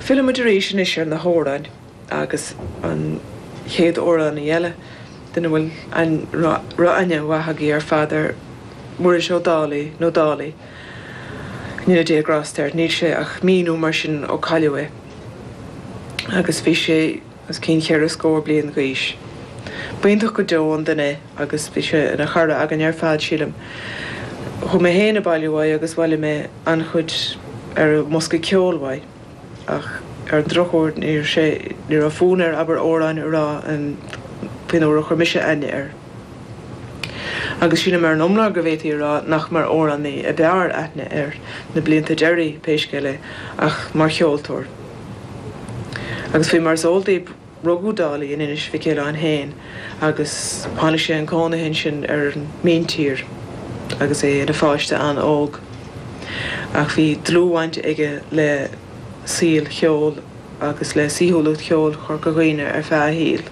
Fillfidh muid arís anois ar na hamhráin agus an chéad amhránaí eile, duine a bhfuil aithne mhaith agaibh ar fad air, Muiris Ó Dálaigh, nó Dálaí, go ndéana Dia grásta air, níl sé ach mí nó mar sin ó cailleadh é agus bhí sé. os cionn cheithre scór bliain d'aois. B'iontach go deo an duine é agus bhí sé ina chara againn ar fad, sílim. Chuaigh mé féin ag bailiú uaidh agus bhailigh mé an-chuid ar an mbosca ceoil uaidh, ach ar an drochuair níor sé, ní raibh fonn air abair amhráin a rá an faoin uair a chuir mise aithne air. Agus sílim ar an iomlán go bhféadfaí a rá nach mar amhránaí a b'fhearr aithne air na blianta deiridh, pé scéal é, ach mar cheoltóir. Agus faoi mar is eol daoib rugadh Dálaigh in Inis Mhic Aoibhleáin féin agus tháinig sé chun cónaithe ansin ar an míntír agus é ina pháiste an-óg. Ach bhí dlúthbhaint aige le saol cheoil agus le saoithiúlacht cheoil Chorca Dhuibhne ar feadh a shaoil.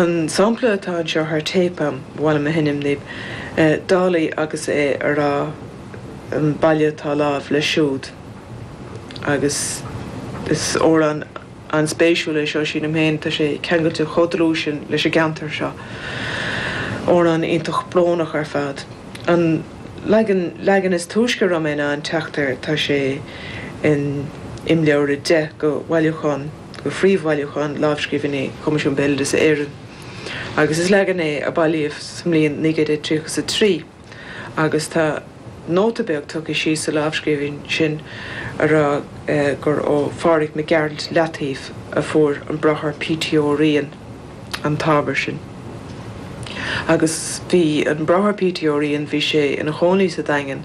An sampla atá anseo tá ar téip agam, ba mhaith liom a sheinm daoib, Dálaigh agus é ag rá An Baile atá Láimh Léi Siúd. agus is amhrán an-spéisiúil é seo, sílim féin, tá sé ceangailte chomh dlúth sin leis an gceantar seo. Amhrán iontach brónach ar fad. An leagan, leagan is túisce a raibh mé in ann teacht air, tá sé in Imleabhar 10 de bhailiúchán, de phríomhbhailiúchán lámhscríbhinní Choimisiún Béaloideasa Éireann, agus is leagan é a bailíodh sa mbliain 1933. agus tá nóta beag tugtha síos sa lámhscríbhinn sin a rá gur ó Phádraig Mac Gearailt, Leataoibh, a fuair an Bráthair P. T. Ó Riain an t-ábhar sin. Agus bhí an Bráthair P. T. Ó Riain, bhí sé ina chónaí sa Daingean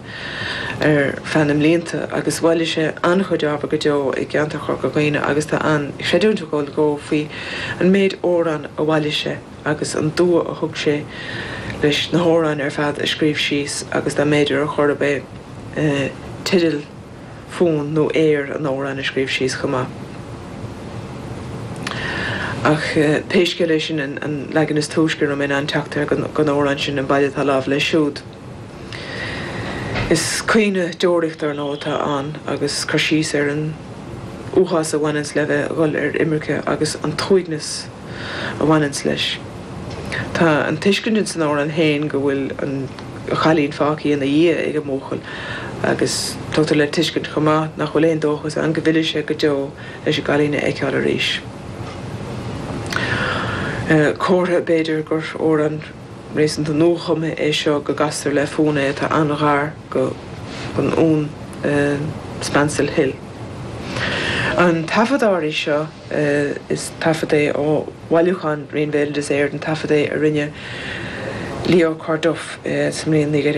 ar feadh na mblianta agus bhailigh sé an-chuid ábhar go deo i gceantar Chorca Dhuibhne agus tá an-chreidiúint ag dul dó faoi an méid amhrán a bhailigh sé. agus an dua a thug sé leis na hamhráin ar fad a scríobh síos agus dá mb'fhéidir ar chor ar bith teideal, fonn nó aer an amhráin a scríobh síos chomh maith. Ach pé scéal é sin an leagan is túisce a raibh mé in ann teacht air den amhrán sin An Baile atá Láimh Léi Siúd. Is caoineadh deoraíochta ar ndóigh atá ann agus cur síos ar an uafás a bhaineanns le bheith ag dhul ar imirce agus an t-uaigneas, a bhaineanns leis. Tá an tuiscint ins an amhrán féin go bhfuil an chailín fágtha ina dhiaidh ag an mbuachaill agus tugtar le tuiscint chomh maith nach bhfuil aon dóchas ann go bhfillfidh sé go deo leis an gcailín a fheiceáil arís. Comhartha b'fhéidir gur amhrán réasúnta nuachumtha é seo go gcastar le fonn é atá an-ghar don fhonn Spancil Hill. An taifead áirithe seo. Is taifead é ó bhailiúchán Roinn Bhéaloideas Éireann, taifead é a rinne Leo Corduff sa mbliain 1900.